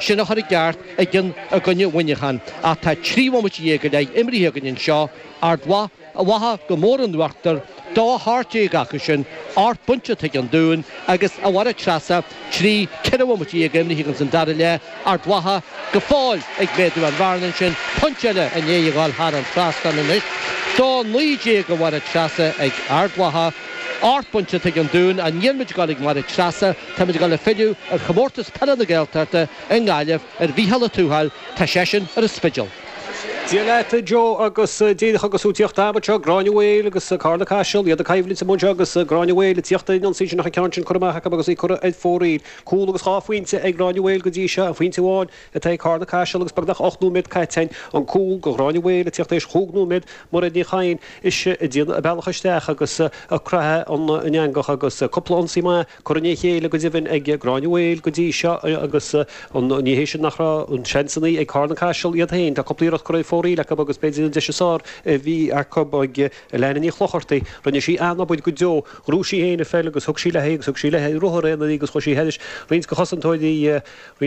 Sin a chur i gceart in éadan Mhuineacháin ach tá trí bhomaite dhéag sa dara leath imríthe againn anseo, Ard Mhacha, Ard Mhacha, go mór in uachtar, dá hocht déag acu sin, ocht bpointe chuig an Dún, agus, a Mháire Treasa, trí, ceithre bhomaite dhéag imríthe againn san dara leath, Ard Mhacha, go fóill ag méadú an bhearna ansin, pointe eile i ndiaidh a dhul thar an trasnán anois, dá naoi déag, a Mháire Treasa, ag Ard Mhacha, ocht bpointe chuig an Dún, an ndéanfaimid a dhul ag Máire Treasa? Táimid ag dul ag filleadh ar Chomórtas Peile na Gaeltachta i nGaillimh ar Mhícheál Ó Tuathail, tá seisean ar an Spidéal. Dia leat a Joe agus Dia chugat is tú tíocht abhus seo Gráinne Mhaol agus Carna Caiseal, iad ag coimhlint amuigh anseo agus Gráinne Mhaol tíocht ag ionsaí ansin ach an ceann sin curtha amach acu agus í curtha ar fóraoil. Cúl agus dhá phointe ag Gráinne Mhaol go dtí seo, phointe amháin atá ag Carna Caiseal agus beagnach ocht nóiméad caite. An cúl go Gráinne Mhaol ag tíocht tar éis chúig nóiméad, Mairéad Ní Chadhain is í ag déanamh a bealach isteach agus ag croitheadh an eangach agus cúpla ionsaí maith, Curtha le chéile go deimhin ag Gráinne Mhaol go dtí seo agus ní hé sin nach raibh seansanna ag Carna Caiseal iad féin. Tá cúpla iarracht curtha ar fóraoil acu agus b'fhéidir an deis is fearr a bhí acu ag Leana Ní Chlochartaigh. Rinne sí an-obair go deo. Ghnóth sí féin an pheil agus thug sí léi agus thug sí léi ar ruathar aonair í agus chuir sí thairis roinnt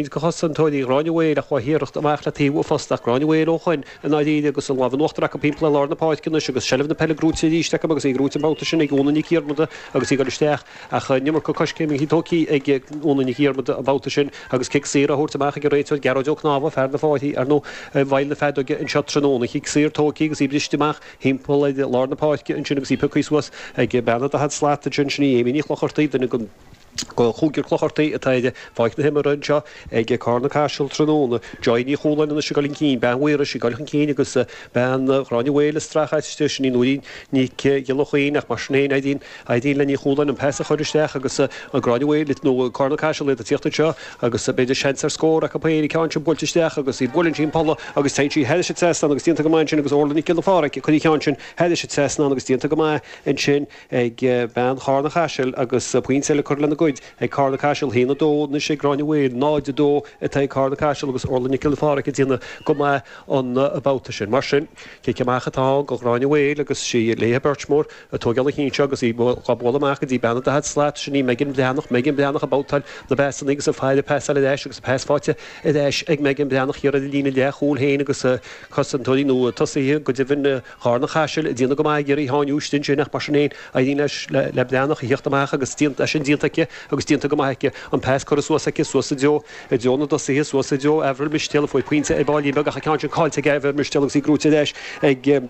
de chosantóirí Ghráinne Mhaol ach bhí a hiarracht amach le taobh an phosta ach Gráinne Mhaol ó shoin i ndáiríre agus an lámh in uachtar acu timpeall ar lár na páirce anois agus seilbh na peile grúite arís acu agus í grúite an babhta sin ag Úna Nic Dhiarmada agus í ag dul isteach Ach an iomarca coiscéimeanna tógtha ag Úna Nic Dhiarmada an babhta sin agus cic saor á thabhairt amach ag an réiteoir Gearóid Ó Conámha, fear na háite, ar ndóigh, i bhfeighil na feadóige anseo tráthnóna. Cic saor tógtha agus í briste amach timpeall ar lár na páirce ansin agus í pioctha suas ag bean 40 slat ansin. Sin í Amy Ní Chlochartaigh, duine den chúigear de Clochartaigh atá ar pháirc na himeartha anseo. ag Carna Caiseal tráthnóna. Joy Ní Chualáin anois ag dul chun cinn, Bean Mhaírois ag dul chun cinn agus bean Ghráinne Mhaol ag streachailt, sin í Nóirín Nic Giolla Chaoin ach mar sin féin, éiríonn le Ní Chualáin an pas a chur isteach agus Gráinne Mhaol nó Carna Caiseal iad ag tíocht anseo agus b'fhéidir seans ar scór acu féin, an ceann sin buailte isteach agus buaileann sí an polla agus téann sí thairis sa trasnán agus déantar go maith ansin agus Órla Nic Giolla Phádraig ag cur an cheann sin thairis sa trasnán agus déantar go maith ansin. ag bean Charna Chaisil agus pointe eile curtha lena gcuid ag Carna Caiseal, 1, 2, anois ag Gráinne Mhaol, 0, 2, atá ag Carna Caiseal agus Orla Nic Giolla Phádraig ag déanamh go maith an babhta sin. Mar sin, cic amach atá ann go Gráinne Mhaol agus sí Léithe beirt mór ag tóigeáil an chinn seo agus í dhá bualadh amach go dtí bean an daichead slat, sin í Megan Bhreathnach, Megan Bhreathnach ag babhtáil na bpasanna agus ag fáil an pas ar ais agus pas fáighte ar ais ag Megan Bhreathnach thiar ar a líne leath chúl féin agus cosantóirí nó tosaithe go deimhin, Charna Chaisil ag déanamh go maith ag iarraidh í a sháinniú istigh ansin ach mar sin féin éiríonn leis an mBreathnach a thiocht amach agus é sin déanta aici agus déanta go maith aici. An pas curtha suas aici, suas sa dtreo, i dtreo na dtosaithe, suas i dtreo Avril Mistéal a fuair pointe ar baillín beag ach an ceann sin caillte ag Avril Mistéal agus í grúite ar ais ag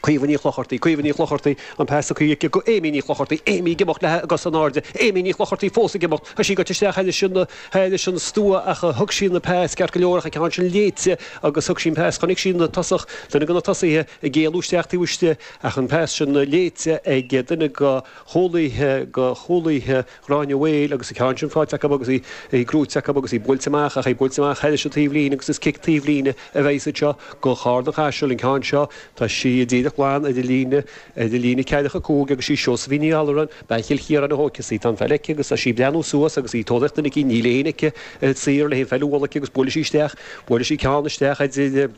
Caoimhe Ní Chlochartaigh, Caoimhe Ní Chlochartaigh, an pas scaoilte aici go Amy Ní Chlochartaigh, Amy ag imeacht léi cosa in airde, Amy Ní Chlochartaigh fós ag imeacht, tá sí goite isteach thairis sin na. Thairis an stua ach thug sí an peas ceart go leor ach an ceann sin léite agus thug sí an peas chonaic sí na tosach duine de na tosaithe ag éalú isteach taobh istigh ach an peas sin léite ag duine de chúlaithe de chúlaithe Ghráinne Mhaol agus an ceann sin faighte acu agus í í gcrúite acu agus í buailte amach ach í buailte amach thairis an taobhlíne agus is cic taobhlíne a bheas anseo do Charna-Caiseal an ceann seo tá sí díreach glan ar an líne ar an líne ceathracha cúig agus sí Seosaimhín Ní Alluráin Bean Chill Chiaráin a thógfas í. Tá an pheil aici agus tá sí ag breathnú suas agus í ag tóraíocht duine eicínt níl éinne aici atá saor le haghaidh an pheil a bhualadh aici agus buaileann sí isteach, buaileann sí ceann isteach idir,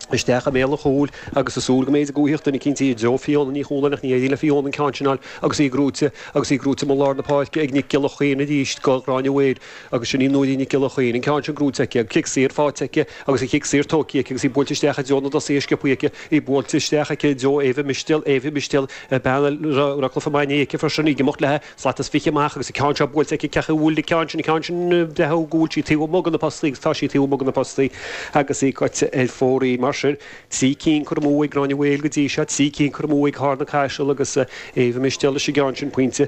isteach i mbéal an chúil agus í ag súil go mb'fhéidir go bhfuigheadh duine eicínt í i dtreo Fiona Ní Chualáin ach ní éiríonn le Fiona an ceann sin a fháil agus í gnóite, agus í gnóite amuigh i lár na páirce ag Nic Giolla Chaoin arís do Ghráinne Mhaol. Agus sin í Nóirín Nic Giolla Chaoin, an ceann sin gnóite aici, an cic saor faighte aici agus an cic saor tógtha aici agus í buailte isteach i dtreo na dtosaithe go sciobtha aici, í buailte isteach aici i dtreo Éabha Mistéal, Éabha Mistéal, bean a raibh cluiche maith inné aici freisin, í ag imeacht léi slat is fiche amach agus an ceann seo buailte aici, ciach a bhuail an ceann sin, an ceann sin braitheadh go bhfuil sí taobh amuigh de na postaí agus tá sí taobh amuigh de na postaí agus í caite ar fóraoil. Mar sin, trí cinn curtha amú ag Gráinne Mhaol go dtí seo, trí cinn curtha amú ag Carna-Caiseal agus Éabha Mistéal leis an gceann sin pointe.